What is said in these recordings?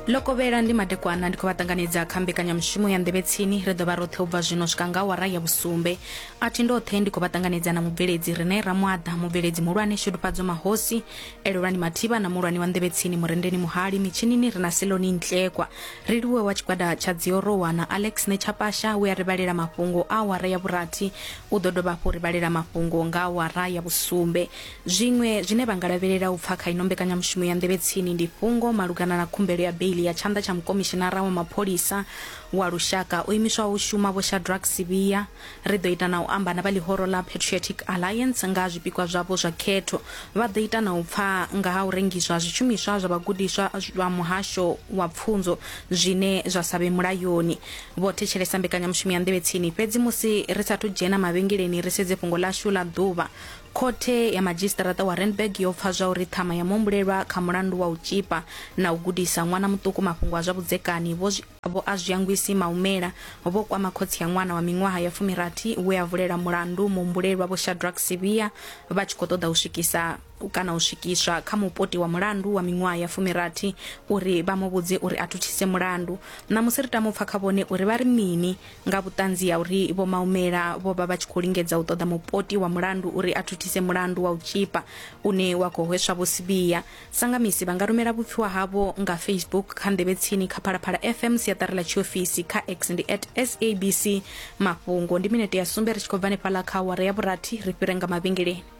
lokovhela ndi madekwana ndi khou vha ṱanganedza kha mbekanyamushumo ya nḓevhe tsini ri ḓo vha roṱhe u bva zwino swika nga wara ya vhusumbe a thi ndoṱhe ndi khou vha ṱanganedza na mubveledzi rine ramwaḓa mubveledzi muhulwane shudufhadzo mahosi elelwani mathiba na muhulwane wa nḓevhe tsini murendeni muhali mitshinini ri na seloni ntlekwa ri liwe wa tshigwada tsha dziorowa na alex netshapasha we a ri vhalela mafhungo a wara ya vhurathi u ḓo dovha hafhu ri vhalela mafhungo nga wara ya vhusumbe Zwiṅwe zwine vha nga lavhelela u pfa kha ino mbekanyamushumo ya Nḓevhe Tsini ndi fhungo malugana na khumbelo ya beiḽi ya tshanḓa tsha Mukomishinara wa Mapholisa wa Lushaka o imiswaho u shuma Vho Shadrack Sibiya. Ri ḓo ita na u amba na vha ḽihoro ḽa Patriotic Alliance nga ha zwipikwa zwavho zwa khetho. Vha ḓo ita na u pfa nga ha u rengiswa ha zwishumiswa zwa vhagudiswa zwa Muhasho wa Pfunzo zwine zwa sa vhe mulayoni. Vho thetshelesa mbekanyamushumo ya Nḓevhe Tsini fhedzi musi ri sa athu dzhena mavhengeleni ri sedze fhungo ḽashu ḽa ḓuvha. Khothe ya Madzhisiṱaraṱa wa Randburg yo pfa zwauri ṱhama ya muhumbulelwa kha mulandu wa u tzhipa na u gudisa ṅwana muṱuku mafhungo a zwa vhudzekani vho Vho Azwiyangwisi Maumela vho kwama khotsi ya ṅwana wa miṅwaha ya fumirathi we a vulela mulandu muhumbulelwa Vho Shadrack Sibiya vha tshi khou ṱoḓa u swikisa kana u swikiswa kha mupoti wa mulandu wa miṅwaha ya fumirathi uri vha mu vhudze uri a thuthise mulandu. Ṋamusi ri tama u pfa kha vhone uri vha ri mini Nga vhuṱanzi ha uri Vho Maumela vho vha vha tshi khou lingedza u ṱoḓa mupoti wa mulandu uri a thuthise mulandu wa u tzhipa une wa khou hweswa Vho Sibiya, Sangamisi vha nga rumela vhupfiwa havho nga Facebook kha Nḓevhe Tsini kha Phalaphala FM siaṱari ḽa tshiofisi, kha X ndi at SABC Mafhungo. Ndi minete ya sumbe ri tshi khou bva hanefhaḽa kha awara ya vhurathi ri fhire nga mavhengeleni.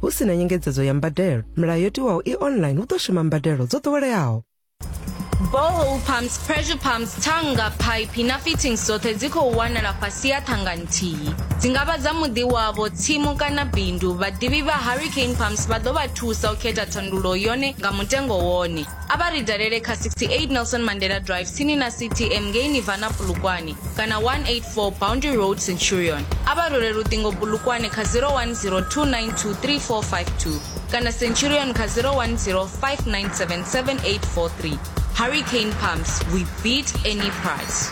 Hu si na nyengedzedzo ya mbadelo, milayo yo tiwaho i online hu ḓo shuma mbadelo dzo ḓoweleaho. borehole pumps pressure pumps thanga phaiphi na fittings dzoṱhe dzi khou wanala fhasi ha thanga nthihi dzi nga vha dza muḓi wavho tsimu kana bindu vhaḓivhi vha hurricane pumps vha ḓo vha thusa u khetha thandululo yone nga mutengo wone A vha ri dalele kha 68 Nelson Mandela Drive tsini na CTM ngei Nirvana Polokwane kana 184 Boundary Road Centurion. A vha role luṱingo Polokwane kha 0102923452 kana Centurion kha 0105977843. Hurricane Pumps, we beat any price.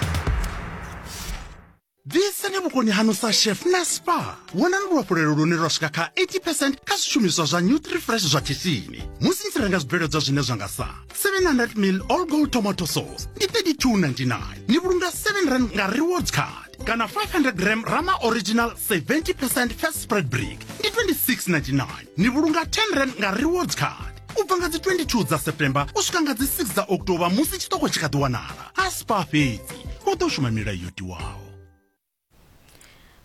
ḓisani vhukoni hanu sa chef na spa vhonani luhafhulelo lune lwa swika kha 80 percent kha zwishumiswa zwa nutrifresh zwa khishini musi ni tshi renga zwibveledzwa zwine zwa nga sa 700 mil all gold tomato sauce ndi 3299 ni vhulunga 7 rand nga rewards card kana 500 gram rama original 70 percent fat spread brick ndi 2699 ni vhulunga 10 rand nga rewards card u bva nga dzi 22 dza september u swika nga dzi 6 dza october musi tshiṱoko tshi kha ḓi wanala a si pfa fhedzi u ḓo shuma milayo yo tiwaho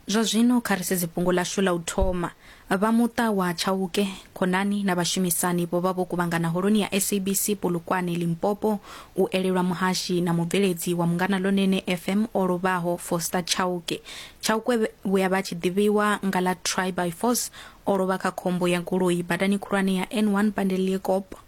zwa zwino kha ri sedze fhungo ḽashu ḽa u thoma vha muṱa wa tshauke khonani na vhashumisani vho vha vho kuvhangana holoni ya sabc polokwane limpopo u elelwa muhashi na mubveledzi wa mungana lonene fm o lovhaho foster tshauke tshauke vhuya vha tshi ḓivhiwa nga ḽa try by force o lovha kha khombo ya goloi badani khulwane ya n1 pandeliekop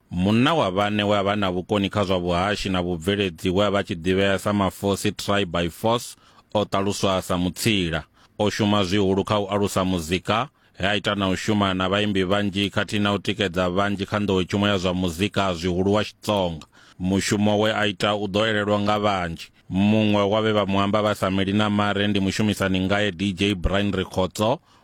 Munna wa vhane we a vha na vhukoni kha zwa vhuhashi na vhubveledzi we a vha tshi ḓivhea sa Mafosi Try by Force o ṱaluswa sa mutsila. O shuma zwihulu kha u alusa muzika, he a ita na u shuma na vhaimbi vhanzhi khathihi na u tikedza vhanzhi kha nḓowetshumo ya zwa muzika zwihulu wa Xitsonga. Mushumo we a ita u ḓo elelwa nga vhanzhi. Muṅwe wa vhe vha mu amba vha sa meli na mare ndi mushumisani ngae DJ Brian Rikhotso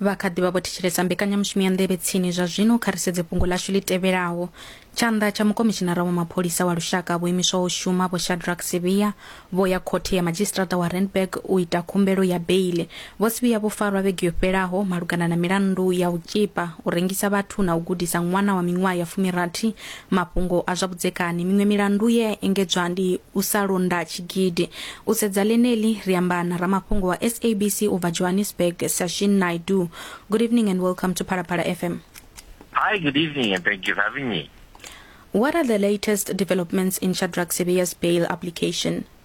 vha kha ḓi vha vho thetshelesa mbekanyamushumo ya nḓevhe tsini zwa zwino kha ri sedze fhungo ḽashu ḽi tevhelaho tshanḓa tsha mukomishinara wa mapholisa wa lushaka vho imiswaho u shuma vho shadrack sevia vho ya khothe ya madzhisiṱiraṱa wa randburg u ita khumbelo ya beile Vho Sibiya vho farwa vhege yo fhelaho malugana na milandu ya u tzhipa, u rengisa vhathu na u gudisa ṅwana wa miṅwaha ya fumirathi mafhungo a zwa vhudzekani. Miṅwe milandu ye ya engedzwa ndi u sa londa tshigidi. U sedza ḽeneḽi, ri amba na ramafhungo wa SABC u bva Johannesburg, Sashin Naidoo. Good evening and welcome to Phalaphala FM. Hi, good evening and thank you for having me. What are the latest developments in Shadrack Sibiya's bail application?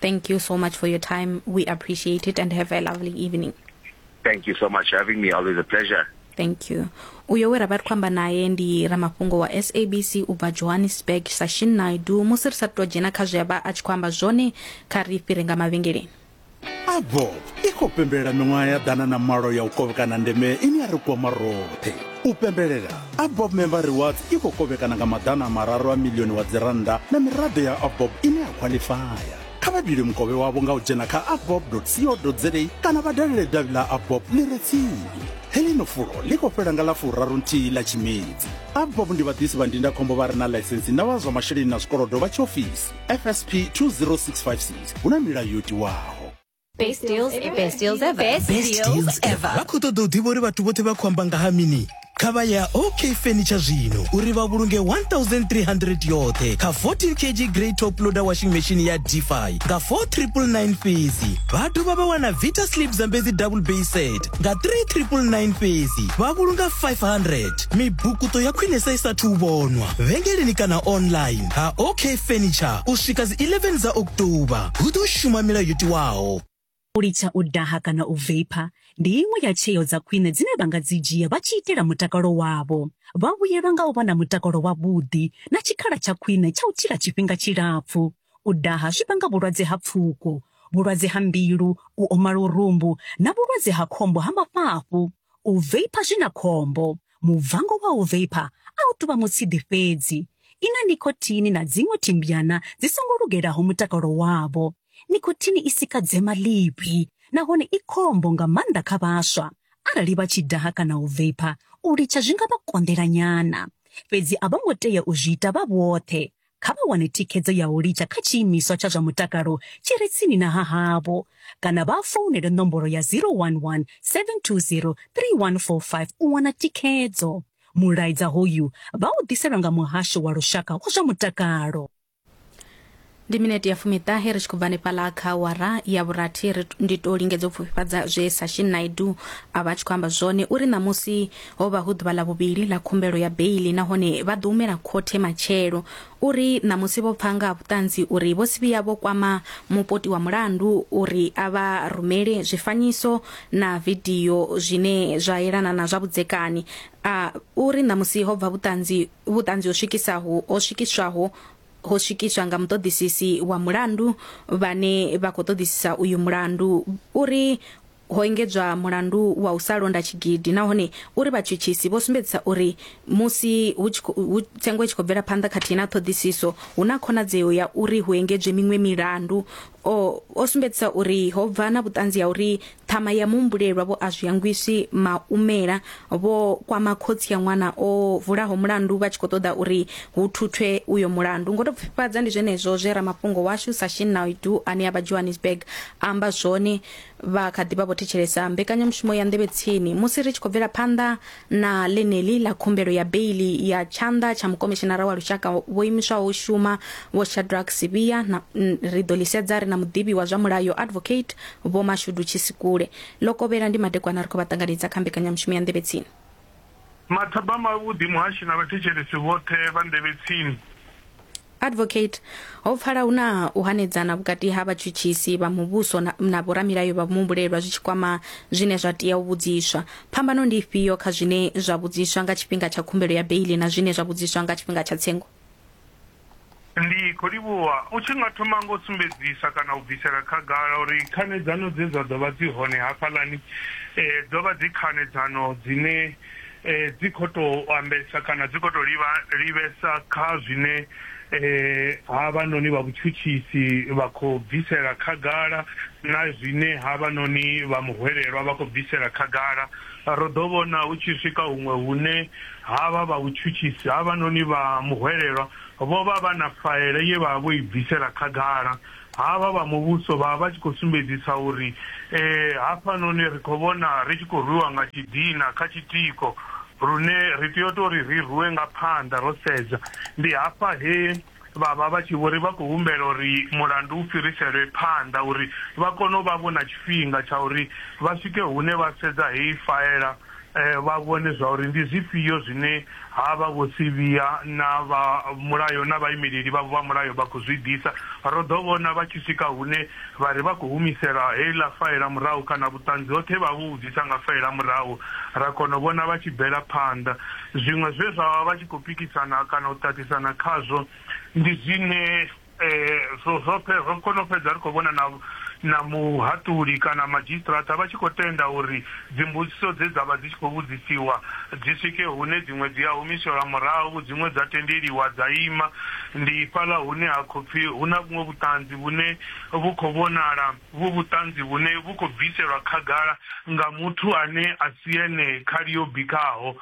Thank you so much for your time. We appreciate it and have a lovely evening. Thank you so much for having me. Always a pleasure. thank you uyo we ra vha ri khou amba naye ndi ramafhungo wa sabc u bva johannesburg sashin naidu musi ri sa tou dzhena kha zwe a vha a tshi khou amba zwone kha ri fhire nga mavhengeleni abo i khou pembelela miṅwaha ya ḓana na malo ya u kovhekana ndeme ine ya ri kwama roṱhe u pembelela abob member rewards i khou kovhekana nga maḓana a mararu a milioni wa dzirannda na miraḓo ya abob ine ya khwaḽifaya kha vha dule mukovhe wavho nga u dzhena kha abob co za kana vha dalele davhi ḽa abob ḽi re tsini heḽino fulo ḽi khou fhela nga ḽa furaru nthihi ḽa tshimedzi abob ndi vhaḓisi vha ndindakhombo vha re na ḽaisensi na vha zwa masheleni na zwikolodo vha tshiofisi fsp 20656 hu na milayo yo tiwaho Best deals, best deals ever. Best deals ever. vha khou ṱoḓa u ḓivha uri vhathu vhoṱhe vha khou amba nga ha mini kha vha ya ok furniture zwino uri vha vhulunge 1300 yoṱhe kha 14 kg grey top loader washing machine ya dfi nga 4999 fhedzi vha dovha vha wana vita slip zambedzi double bay set nga 3999 fhedzi vha vhulunga 500 mibukuto ya khwinesa i sathu u vhonwa vhengeleni kana online ha OK Furniture u swika dzi 11 dza October. Hu ḓo shuma milayo yo tiwaho. U litsha u daha kana u veipha ndi iṅwe ya tsheo dza khwine dzine vha nga dzi dzhia vha tshi itela mutakalo wavho. Vha vhuyelwa nga u vha na mutakalo wavhuḓi na tshikhala tsha khwine tsha u tshila tshifhinga tshilapfu. U daha zwi vhanga vhulwadze ha pfuko, vhulwadze ha mbilu, u oma lurumbu na vhulwadze ha khombo ha mafhafhu. U veipa zwi na khombo. Mubvango wa u veipa a u tou vha mutshidi fhedzi. I na nicotine na dziṅwe thimbyana dzi songo lugelaho mutakalo wavho. Nicotine i sika dzema ḽivhi nahone i khombo nga maanḓa kha vhaswa. Arali vha tshi daha kana u veipa, u litsha zwi nga vha konḓela nyana. Fhedzi a vho ngo tea u zwi ita vha vhoṱhe. Kha vha wane thikhedzo ya u litsha kha tshiimiswa tsha zwa mutakalo tshi re tsini na ha havho kana vha founele nomboro ya 011 720 3145 u wana thikhedzo. Mulaedza hoyu vha u ḓiselwa nga Muhasho wa Lushaka wa zwa Mutakalo. ndi minete ya fumiṱahe ri tshi khou bva hanefhaḽa kha awara ya vhurathi ri ndi tou lingedza u pfufhifhadza zwe sashin naidu a vha a tshi khou amba zwone uri ṋamusi Ho vha hu ḓuvha ḽa vhuvhili ḽa khumbelo ya beili nahone vha ḓo humela khothe matshelo. U ri ṋamusi vho pfa nga ha vhuṱanzi uri vho Sibiya vho kwama mupoti wa mulandu uri a vha rumele zwifanyiso na vidio zwine zwa yelana na zwa vhudzekani. A u ri ṋamusi ho bva vhuṱanzi vhuṱanzi ho swikisaho ho swikiswaho ho swikiswa nga muṱoḓisisi wa mulandu vhane vha khou ṱoḓisisa uyu mulandu uri ho engedzwa mulandu wa u sa londa tshigidi nahone uri vhatshutshisi vho sumbedzisa uri musi hu tshi khou tsengo i tshi khou bvela phanḓa khathihi na ṱhoḓisiso hu na khonadzeo ya uri hu engedzwe miṅwe milandu o, o sumbedzisa uri ho bva na vhuṱanzi ha uri ṱhama ya muhumbulelwa vho a zwi hangwiswi maumela vho kwama khotsi ya ṅwana o vulaho mulandu vha tshi khou ṱoḓa uri hu thuthwe uyo mulandu ngo tou pfifhadza ndi zwenezwo zwe ramafhungo washu sashin naidu ane a vha johannesburg amba zwone vha kha ḓi vha vho thetshelesa mbekanyamushumo ya nḓevhe tsini musi ri tshi khou bvela phanḓa na ḽeneḽi ḽa khumbelo ya beili ya tshanḓa tsha mukomishinara wa lushaka vho imiswaho u shuma vho shadrack sivhiya na ri ḓo ḽi sedza ri na muḓivhi wa zwa mulayo advocate vho mashudu tshisikule ḽo kovhela ndi madekwana ri khou vha ṱanganedza kha mbekanyamushumo ya nḓevhe tsini Mathabama avhuḓi muhashi na vhathetshelesi vhoṱhe vha nḓevhe tsini. Advocate, Ho pfala hu na u hanedzana vhukati ha vhatshutshisi vha muvhuso na, na vhoramilayo vha muhumbulelwa zwi tshi kwama zwine zwa tea u vhudziswa. Phambano ndi ifhio kha zwine zwa vhudziswa nga tshifhinga tsha khumbelo ya beiḽi na zwine zwa vhudziswa nga tshifhinga tsha tsengo? Ndi khou livhuwa u tshi nga thoma nga u sumbedzisa kana u bvisela khagala uri khanedzano dze dza ḓo vha dzi hone hafhaḽani dzo vha dzi khanedzano dzine dzi khou tou ambesa kana dzi khou tou livha livhesa kha zwine havhanoni vha vhutshutshisi vha khou bvisela khagala na zwine havhanoni vha muhwelelwa vha khou bvisela khagala. Ro ḓo vhona hu tshi swika huṅwe hune Havha vha vhutshutshisi havhanoni vha muhwelelwa vho vha vha na faela ye vha vha vho i bvisela khagala. Havha vha muvhuso vha vha vha tshi khou sumbedzisa uri, Ee, hafhanoni ri khou vhona ri tshi khou rwiwa nga tshidina kha tshitiko, lune ri tea u tou ri ri rwiwe nga phanḓa ro sedza. Ndi hafha he. vha vha vha tshi vho ri vha khou humbela uri mulandu u fhiriselwe phanḓa uri vha kone u vha vho na tshifhinga tsha uri vha swike hune vha sedza heyi faela vha vhone zwa uri ndi zwifhio zwine ha vha vho sivhiya na vha mulayo na vhaimeleli vhavho vha mulayo vha khou zwi ḓisa. Ro ḓo vhona vha tshi swika hune vha ri vha khou humisela heiḽa faela murahu kana vhuṱanzi hoṱhe he vha vha vho vhu ḓisa nga faela murahu ra kona u vhona vha tshi bvela phanḓa. Zwiṅwe zwe vha vha vha tshi khou pikisana kana u ṱaṱisana khazwo ndi zwine zwo zwo ro kona u fhedza ri khou vhona na na muhaṱuli kana madzhisiṱiraṱa vha tshi khou tenda uri dzimbudziso dze dza vha dzi tshi khou vhudzisiwa dzi swike hune dziṅwe dzi a humiselwa murahu dziṅwe dza tendeliwa dza ima ndi fhaḽa hune ha khou pfhi hu na vhuṅwe vhuṱanzi vhune vhu khou vhonala Uvhu vhuṱanzi vhune vhu khou bviselwa khagala nga muthu ane a si ene khali yo bikaho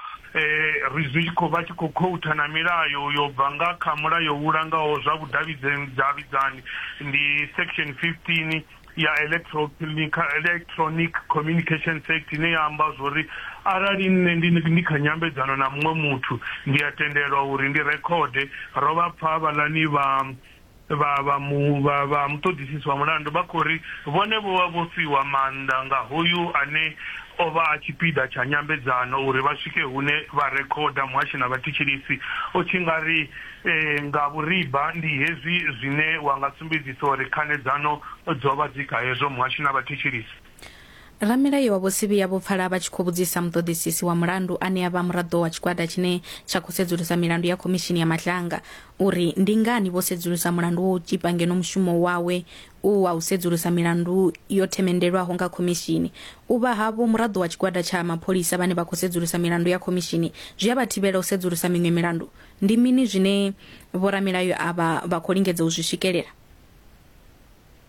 ri zwi tshi khou vha tshi khou khoutha na milayo yo bva nga kha Mulayo u Langaho zwa Vhudavhidzani, ndi Section 15 ya Electronic Communications Act ine ya amba zwa uri arali nṋe ndi kha nyambedzano na muṅwe muthu ndi a tendelwa uri ndi rekhode. Ro vha pfa havhaḽani vha. Vha vha mu, vha, vha muṱoḓisisi wa mulandu vha khou ri vhone vho vha vho fhiwa maanḓa nga hoyu ane o vha a tshipiḓa tsha nyambedzano uri vha swike hune vha rekhoda muhashi na vhathetshelesi. U tshi nga ri e, nga vhuriba ndi hezwi zwine wa nga sumbedzisa uri khanedzano dzo vha dzi kha hezwo muhashi na vhathetshelesi. Ramilayo wa Vho Sibiya vho pfala vha tshi khou vhudzisa muṱoḓisisi wa mulandu ane a vha muraḓo wa tshigwada tshine tsha khou sedzulusa milandu ya Khomishini ya Matlanga uri ndi ngani vho sedzulusa mulandu wo u tzhipa ngeno mushumo wawe u wa u sedzulusa milandu yo themendelwaho nga khomishini. U vha havho muraḓo wa tshigwada tsha mapholisa vhane vha khou sedzulusa milandu ya khomishini zwi a vha thivhela u sedzulusa miṅwe milandu. Ndi mini zwine vhoramilayo avha vha khou lingedza u zwi swikelela?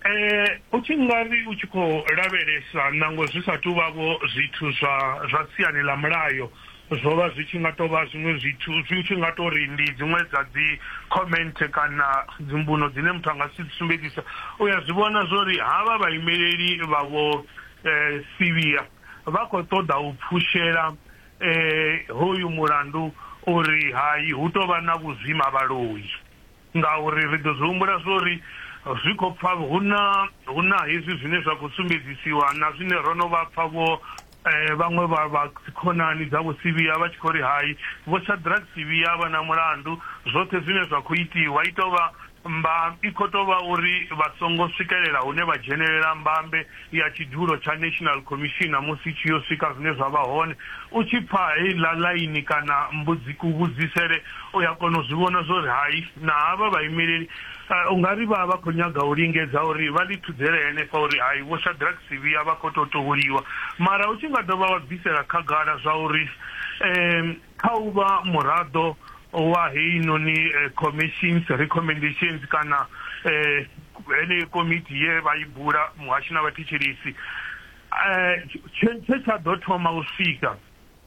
Eh, u tshi nga ri u tshi khou lavhelesa nangwe zwi sa tou vhavho zwithu zwa zwa siani ḽa mulayo zwo vha zwi tshi nga tou vha zwiṅwe zwithu zwi tshi nga tou ri ndi dziṅwe dza dzi comment kana dzimbuno dzine muthu a nga si sumbedzisa u ya zwi vhona zwo ri havha vhaimeleli vha vho eh, sivhiya vha khou ṱoḓa u pfushela eh, hoyu mulandu uri hai hu tou vha na vhuzwima vhaloi Ngauri ri ḓo zwi humbula zwo ri zwi khou pfa hu na hu na hezwi zwine zwa khou sumbedzisiwa na zwine ro no vha pfa vho vhaṅwe vha vha dzikhonani dza Vho Sivhiya vha tshi khou ri hai, Vho Shadrack Sivhiya a vha na mulandu, zwoṱhe zwine zwa khou itiwa i tou vha mba, i khou tou vha uri vha songo swikelela hune vha dzhenelela mbambe. ya tshidulo tsha National Commissioner musi tshi yo swika zwine zwa vha hone. U tshi pfa heiḽa ḽaini kana mbudzi kuvhudzisele u ya kona u zwi vhona zwo ri hai na havha vhaimeleli u nga ri vha vha khou nyaga u lingedza uri vha ḽi thudzele henefha uri hai Vho Shadrack Sibiya vha khou tou tuhuliwa mara u tshi nga dovha wa bvisela khagala zwa uri Kha u vha muraḓo wa heinoni Commission's Recommendations kana heneyo komiti ye vha i bula muhasho na vhathetshelesi, tshe tsha ḓo thoma u swika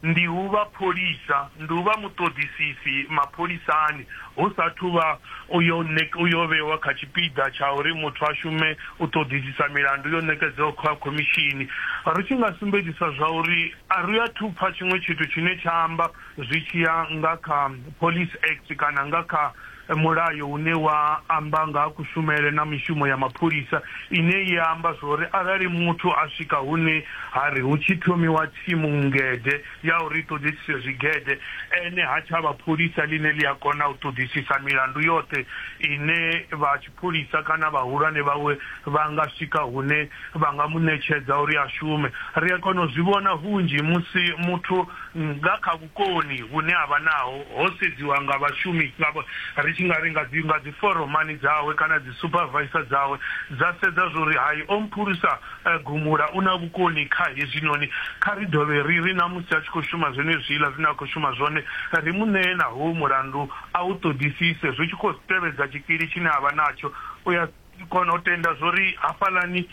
ndi u vha pholisa, ndi u vha muṱoḓisisi mapholisani hu sa athu vha u yo vhewa kha tshipiḓa tsha uri muthu a shume u ṱoḓisisa milandu yo ṋekedzwaho kha khomishini. Ri tshi nga sumbedzisa zwa uri. A ri athu pfa tshiṅwe tshithu tshine tsha amba zwi tshi ya nga kha Police Act kana nga kha mulayo une wa amba nga ha kushumele na mishumo ya mapholisa ine ya amba zwori arali muthu a swika hune ha ri hu tshi thomiwa thimu ngede ya uri i ṱoḓisise zwigede, ene ha tsha vha pholisa ḽine ḽi a kona u ṱoḓisisa milandu yoṱhe ine vha. Pholisa kana vhahulwane vhawe vha nga swika hune vha nga mu ṋetshedza uri a shume. Ri a kona u zwi vhona hunzhi musi muthu nga kha vhukoni vhune a vha naho ho sedziwa nga vhashumi, ri tshi nga ri nga dzi nga dzi foromani dzawe kana dzi supervisor dzawe dza sedza zwa uri hai o mphulusa gumula, u na vhukoni kha hezwinoni. Kha ri dovhe ri ri na musi a tshi khou shuma zwenezwiḽa zwine a khou shuma zwone, ri mu ṋee na hoyu mulandu A u ṱoḓisise, zwi tshi khou tevhedza tshikili tshine a vha natsho, u a kona u tenda zwa uri hafhaḽani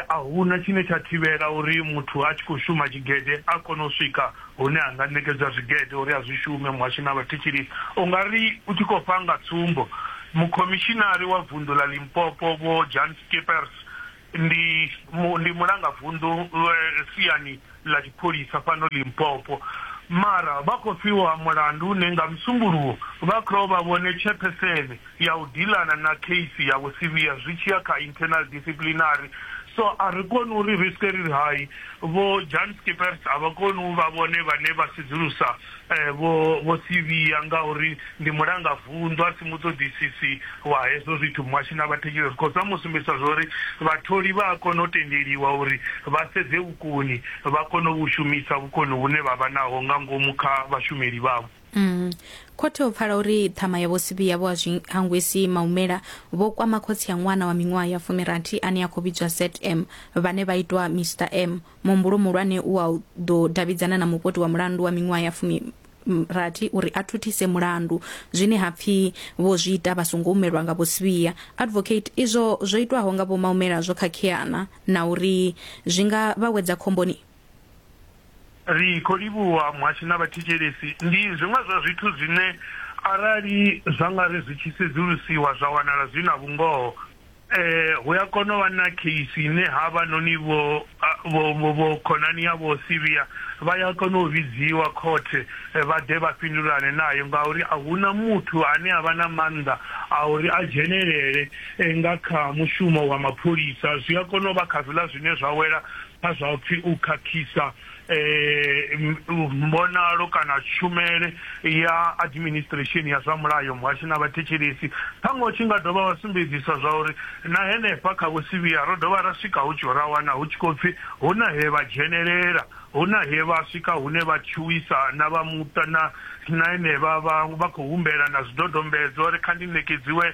a hu na tshine tsha thivhela uri muthu a tshi khou shuma tshigede a kone u swika hune a nga ṋekedzwa zwigede uri a zwi shume. Muhasho na vhathetshelesi. U nga ri u tshi khou pfa nga tsumbo, Mukhomishinari wa Vunḓu ḽa Limpopo Vho Jan Schippers, Ndi mu, ndi mulangavunḓu siani ḽa tshipholisa fhano Limpopo. Mara vha khou fhiwa mulandu une nga Musumbuluwo vha khou vha vhone tshephesene ya u dilana na kheisi ya Vho Sibiya zwi tshi ya kha internal disciplinary. So a ri koni uri ri swike ri ri hai Vho Jan Schippers a vha koni u vha vhone vhane vha sedzulusa Vho Vho Sivhiya, ngauri ndi mulanga vunḓu a si muṱoḓisisi wa hezwo zwithu, muhashi na vhathetshelesi khosi vha mu sumbedzisa zwa uri vhatholi vha a kona u tendeliwa uri vha sedze vhukoni vha kone u vhu shumisa vhukoni vhune vha vha naho nga ngomu kha vhashumeli vhavho. Khothe ho pfala uri ṱhama ya Vho Sivhiya Vho a zwi hangwisi maumela vho kwama khotsi ya ṅwana wa miṅwaha ya fumirathi ane a khou vhidzwa Seth M vhane vha itwa Mister M Muhumbulo muhulwane u wa u ḓo davhidzana na mupoti wa mulandu wa miṅwaha ya fumi rathi uri a thuthise mulandu zwine ha pfi vho zwi ita vha songo umelwa nga vho Sibiya advocate izwo zwo itwaho nga vho Maumela zwo khakheana na uri zwi nga vha wedza khomboni. Ri khou livhuwa muhasho na vhathetshelesi. Ndi zwiṅwe zwa zwithu zwine arali zwa nga ri zwi tshi sedzulusiwa zwa wanala zwi na vhungoho, Hu a kona u vha na kheisi ine havhanoni vhokhonani ya Vho Siria vha ya kona u vhidziwa khothe vha ḓe vha fhindulane nayo ngauri a hu na muthu ane a vha na maanḓa a uri a dzhenelele nga kha mushumo wa mapholisa. Zwi a kona u vha kha zwiḽa zwine zwa wela kha zwa u pfi u khakhisa. mbonalo kana tshumele ya administration ya zwa mulayo muhasho na vhathetshelesi ṱhaṅwe u tshi nga dovha wa sumbedzisa zwa uri na henefha kha vhusivhiya ro dovha ra swika hu tshi ra wana hu tshi khou pfhi hu na he vha dzhenelela hu na he vha swika hune vha tshuwisa na vha muṱa na Na henevha vha vha khou humbela na zwidodombedzwa uri kha ndi ṋekedziwe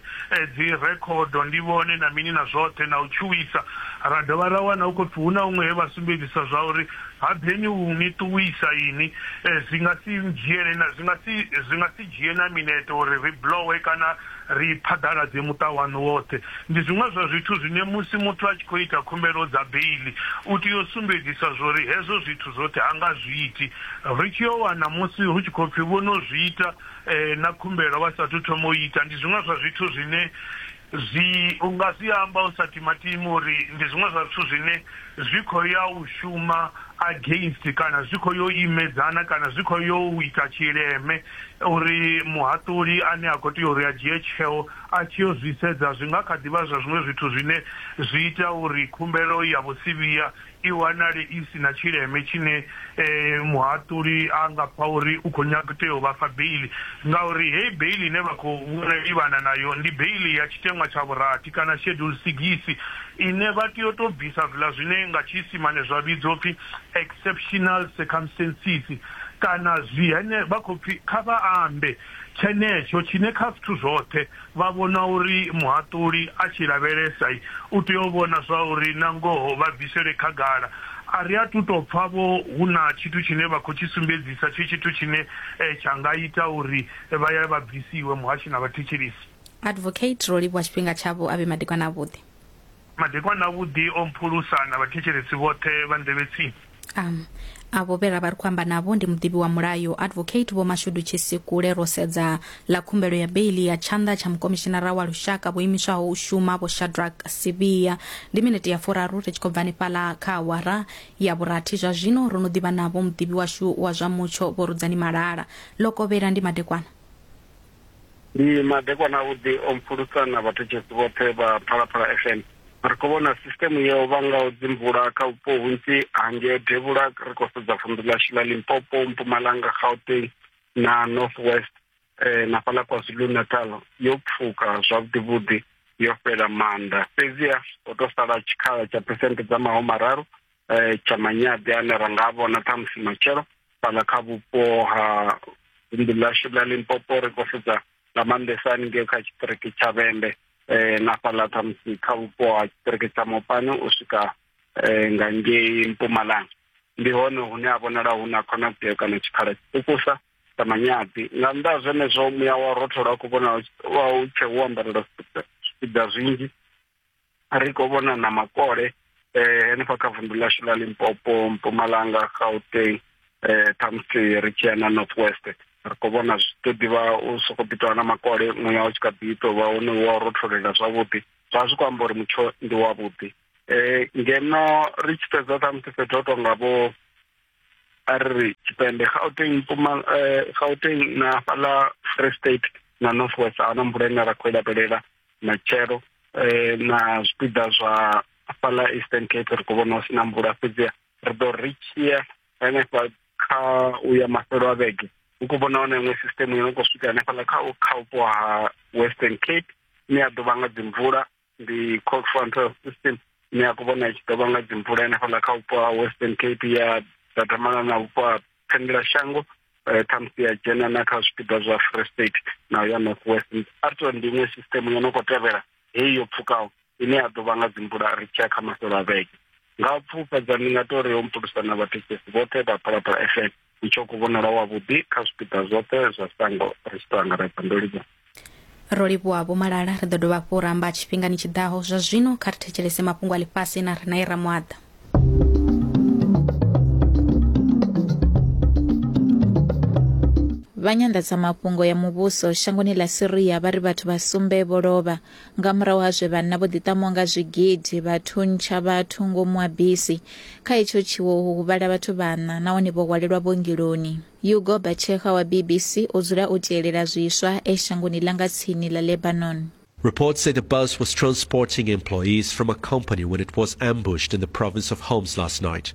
dzirekhodo, ndi vhone na mini na zwoṱhe na u tshuwisa. Ra dovha ra wana hu khou pfi hu na huṅwe he vha sumbedzisa zwa uri ha ḓeni u ni ṱuwisa inwi, zwi nga si dzhiele na, zwi nga si, zwi nga si dzhie na minete uri ri blowe kana. ri i phaḓaladze muṱa waṋu woṱhe. Ndi zwiṅwe zwa zwithu zwine musi muthu a tshi khou ita khumbelo dza beiḽi, u tea u sumbedzisa zwa uri hezwo zwithu zwoṱhe ha nga zwi iti. Ri tshi yo wana musi hu tshi khou pfi vho no zwi ita na khumbelo vha sa athu thoma u ita, ndi zwiṅwe zwa zwithu zwine zwi, u nga zwi amba u sa timatimi uri ndi zwiṅwe zwa zwithu zwine zwi khou ya u shuma against kana zwi khou ya u imedzana kana zwi khou ya u ita tshileme Uri muhaṱuli ane a khou tea uri a dzhie tsheo a tshi yo zwi sedza, zwi nga kha ḓi vha zwa zwiṅwe zwithu zwine zwi ita uri khumbelo ya vhusivhiya i wanale i si na tshileme tshine muhaṱuli a nga pfa uri u khou nyaga tea u vha fha beiḽi. Ngauri heyi beiḽi ine vha khou livhana nayo ndi beiḽi ya tshiteṅwa tsha vhurathi kana Schedule Sigisi ine vha tea u tou bvisa zwiḽa zwine nga Tshiisimane zwa vhidzwa u pfi Exceptional Circumstances. kana zwi hene, vha khou pfi kha vha ambe tshenetsho tshine kha zwithu zwoṱhe vha vhona uri muhaṱuli a tshi lavhelesa u tea u vhona zwauri na ngoho vha bvisele khagala. A ri athu tou pfa-vho hu na tshithu tshine vha khou tshi sumbedzisa tshi tshithu tshine tsha nga ita uri vha ya vha bvisiwe muhashi na vhathetshelesi. Advocate Rolivhuwa tshifhinga tshavho a vhe madekwana avhuḓi. Madekwana avhuḓi o mphulusa na vhathetshelesi vhoṱhe vha nḓevhe tsini. Am. Avho vhe ra vha ri khou amba navho ndi muḓivhi wa mulayo, Advocate Vho Mashudu Tshisikule, Ro Sedza ḽa khumbelo ya beiḽi ya tshanḓa tsha Mukomishinara wa Lushaka vho imiswaho u shuma Vho Shadrack Sibiya. Ndi minete ya furaru ri tshi khou bva hanefhaḽa kha awara ya vhurathi zwa zwino ro no ḓivha navho muḓivhi washu wa zwa mutsho Vho Rudzani Malala. Lokovhela ndi madekwana. Ndi madekwana avhuḓi o mpfulusa na vhathetshelesi vhoṱhe vha Phalaphala FM. Ri khou vhona sisiteme yo vhangaho dzimvula kha vhupo hunzhi ha ngeo devhula ri khou sedza vunḓu ḽashu ḽa Limpopo, Mpumalanga, Gauteng na North West eh, na fhaḽa KwaZulu Natal yo pfuka zwavhuḓi vhuḓi yo fhela maanḓa. Fhedziha ho tou sala tshikhala tsha phesenthe dza mahumararu eh, tsha manyaḓi ane ra nga vhona ṱhamusi matshelo fhala kha vhupo ha vunḓu ḽashu ḽa limpopo ri khou sedza nga maanḓesa haningei kha tshiṱiriki tsha vhembe eh, na fhala ṱhamusi kha vhupo ha tshiṱiriki tsha mopani u swika eh, nga ngei mpumalanga ndi hone hune ha vhonala hu na khonadzeo kana tshikhala tshiṱukusa sa manyaḓi nga nnḓa ha zwenezwo muya wa rothola u khou vhonala u tshe wo ambarela zwipiḓa zwinzhi ri khou vhona na makole eh henefha kha vundu ḽashu ḽa limpopo mpumalanga gauteng eh khamusi ri tshi ya na north west ri khou vhona zwi ḓo ḓivha u soko ḓi tovha na makole muya u tshi kha ḓi tou vha hone wa rotholela zwavhuḓi zwa zwi khou amba uri mutsho ndi wavhuḓi eh ngeno ri tshi sedza khamusi fhethu ho tonga vho a re re tshipembe gauteng eh, gauteng na fhala free state na north west a na mvula ine ra khou i lavhelela matshelo eh, na zwipiḓa zwa fhala eastern cape ri khou vhona hu si na mvula fhedzi ri ḓo ri tshia hanefha kha u ya mafhelo a vhege hu khou vhona hone iṅwe system yo no khou swika hanefhaḽa kha kha vhupo ha western cape ine ya ḓo vha nga dzimvula ndi cold front system ine ya khou vhona i tshi ḓovha nga dzimvula henefhaḽa kha vhupo ha western cape ya dadamala na vhupo ha phendela shango eh, ṱhamusi ya dzhena na kha zwipiḓa zwa free state na ya north west arto ndi iṅwe system yo no khou tevhela heyi yo pfukaho ine ya ḓovha nga dzimvula ri tshiya kha maselo a vhege nga pfufhadza ndi nga tori ho mpulusa na vhathetshelesi vhoṱhe vha phalaphala fm ndi tsho kuvhonala wavhuḓi kha zwipiḓa zwoṱhe zwa sango ri tshi tou angaredza ndo livhuwa ro livhuwa vho malala ri ḓo dovha hafhu u ramba tshifhingani tshi ḓaho zwa zwino kha ri thetshelese mafhungo a ḽifhasi na rina ira muaḓa vha nyanḓadzamafhungo ya muvhuso shangoni ḽa syria vha ri vhathu vha sumbe vho lovha Nga murahu ha zwe vhanna vho ḓiṱamaho nga zwigidi vha thuntsha vhathu ngomu ha bisi, kha hetsho tshiwo ho huvhala vhathu vhaṋa nahone vho hwalelwa vhuongeloni. Hugo Bachecha wa BBC o dzula o tielela zwiswa e shangoni ḽa nga tsini ḽa Lebanon. Reports say the bus was transporting employees from a company when it was ambushed in the province of Homs last night.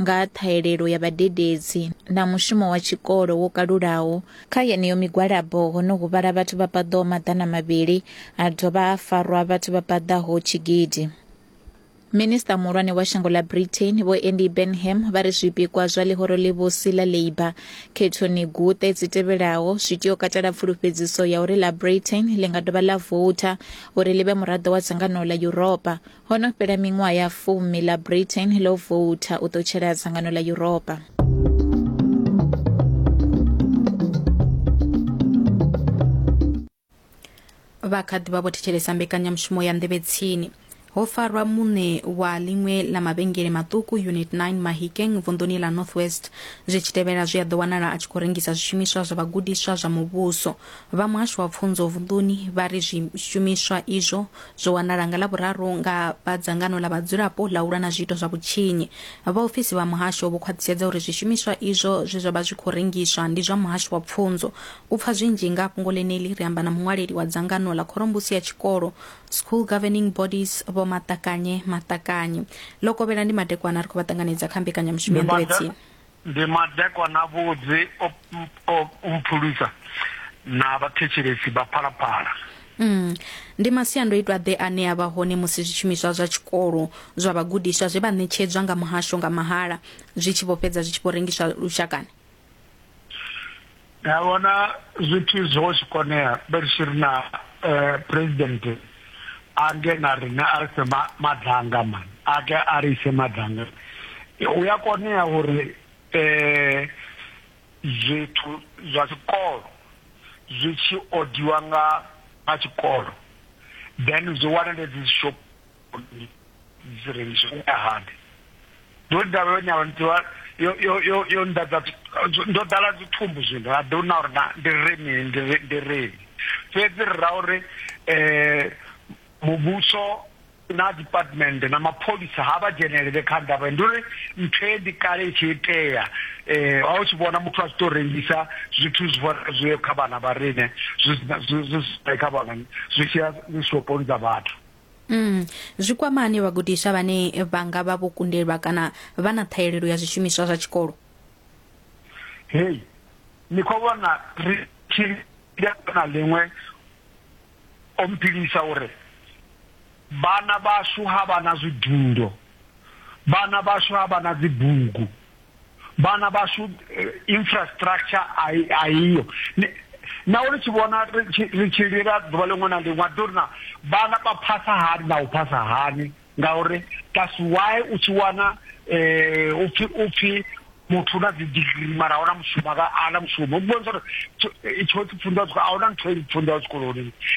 nga ha ṱhahelelo ya vhadededzi na mushumo wa tshikolo wo kalulaho. Kha yeneyo migwalabo ho no huvhala vhathu vha paḓaho maḓana mavhili ha dovha ha farwa vhathu vha paḓaho tshigidi. Minisiṱa muhulwane wa shango ḽa Britain Vho Andy Burnham vha ri zwipikwa zwa ḽihoro ḽivhusi ḽa Labour khethoni guṱe dzi tevhelaho zwi tea u katela pfulufhedziso ya uri ḽa Britain ḽi nga dovha ḽa voutha uri ḽi vhe muraḓo wa dzangano ḽa Yuropa ho no fhela miṅwaha ya fumi ḽa britain ḽo voutha u ṱutshela dzangano ḽa yuropa vha kha ḓi vha vho thetshelesa mbekanyamushumo ya nḓevhe tsini ho farwa muṋe wa ḽiṅwe ḽa mavhengele maṱuku unit 9 mahikeng vunḓuni ḽa north west zwi tshi tevhela zwi a ḓo wanala a tshi khou rengisa zwishumiswa zwa vhagudiswa zwa muvhuso Vha muhasho wa pfunzo vunḓuni vha ri zwishumiswa izwo zwo wanala nga Lavhuraru nga vha dzangano ḽa vhadzulapo ḽa u lwa na zwiito zwa vhutshinyi. Vhaofisi vha muhasho vho khwaṱhisedza uri zwishumiswa izwo zwe zwa vha zwi khou rengiswa ndi zwa muhasho wa pfunzo. U pfa zwinzhi nga fhungo ḽeneḽi ri amba na muṅwaleli wa dzangano ḽa khorombusi ya tshikolo School Governing Bodies Vho Maṱakanye Maṱakanye. Ḽo kovhela ndi madekwana ri khou vha ṱanganedza kha mbekanyamushumo ya nḓowetsini. Ndi madekwana-vhudzi o o mphulusa na vhathetshelesi vha Phalaphala. Umm. Ndi masiandoitwa-ḓe ane a vha hone musi zwishumiswa zwa tshikolo zwa vhagudiswa zwe vha ṋetshedzwa nga muhasho nga mahala zwi tshi vho fhedza zwi tshi vho rengiswa lushakani? ya vhona zwithu zwo tshi konea vhe tshi ri na eh, president ange na rine a rise madanga man ake a ri ise madanga u ya konea uri eh zwithu zwa tshikolo zwi tshi odiwa nga a tshikolo then zwi wanale dzi shop uri dzi rengiswe u ya hani ndo davha yo nyala ntiwa yo yo yo yo ndadza ndo dala dzi thumbu zwino ha do na uri na ndi remi ndi ndi remi fhedzi ri ra uri eh muvhuso na department na mapholisa ha vha dzhenelele kha ndavha ndi uri nthe ndi kale itshi itea eh a u tshi vhona muthu a tshi to rengisa zwithu zwi vhona zwi kha vhana vha rine zwi zwi zwi kha vhana zwi tshi ya zwi shoponi dza vhathu Mm, zwi kwama hani vhagudiswa vhane vha nga vha vho kundelwa kana vha na ṱhahelelo ya zwishumiswa zwa tshikolo hei ni khou vhona ri tshi na ḽiṅwe o mpilisa uri vhana vhashu ha vha na zwidundo vhana vhashu ha vha na dzibugu vhana vhashu eh, infrastructure a iyo na uri tshi vhona ri tshi lila ḓuvha ḽiṅwe na ḽiṅwe ḓo ri na vhana vha phasa hani na u phasa hani ngauri that's why u tshi wana um upfi upfi muthu na dzidigiri mara ahuna mushumo ana mushumo u vhonisa uri tsho tshipfundiwa ahuna nthu e ipfundiwa zwikoloni